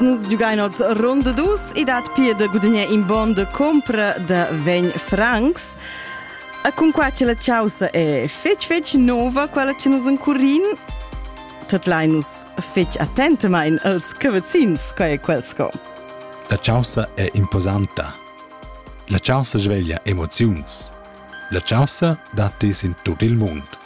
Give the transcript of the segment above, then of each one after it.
Nus giugain oz ronda dus e dat pia da gudagnar in bon de compra de 20 francs. E cun qua che la chaussa è fetg fetg nova, quella che nus encurin, tetlai nus fetg attentamain als cavazzins, quai è quel sco. La chaussa è imposanta. La chaussa sveglia emoziuns. La chaussa dat dis in tut il mund.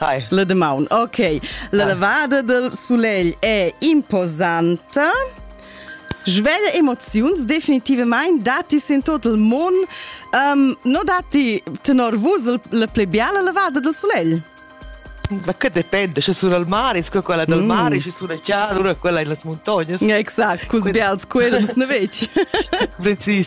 Hi. La demaun, ok. La lavada del sulegl è imposanta. Sveglia emoziuns definitivamente dati in tot il mondo. Um, non dati tenor vus la più bella lavada del sulegl? Ma che dipende, c'è solo il mare, sco quella del mm. mare, c'è sulla chiara, una quella in las montagne. Exakt, con sbials quelli, ne vedi. Precis.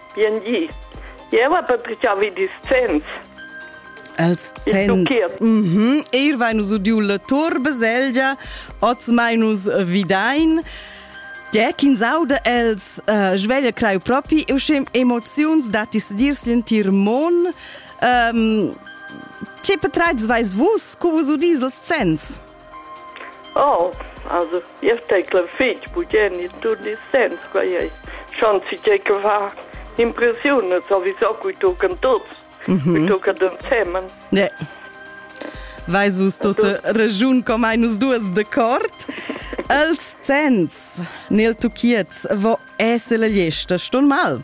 Bien gi. Eu ha publichà vi discents. Els zenns. Mm -hmm. Ir vainus udiu la tur baselgia, oz mainus vidain. Tge ch'ins auda els uh, sveglia creu propi, eu schem emoziuns datis dirs l'entir mon. Um, che petreids vais vus, cu vus udis els zenns? Oh, also, io tecla fitg bugen il tun il sens, quai ei. Schon si tgei che fa impressiun, sowieso cui tocan tots, mhm. cui tocan ensemen. Yeah. Vais vus tote regiun com ai nus duas de cort? Els sens nel tuchiez vo esse la gliesta ston mal.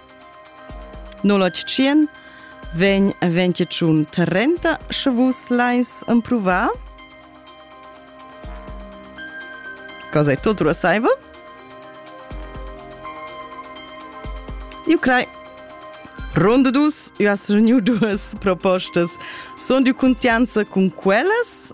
081 vegn 21 30 sche vus leis empruvar. Cosa è tutto assaivel? Eu crei. Ronda dus, eu as reuniu duas propostas. Sunt de contianza com quellas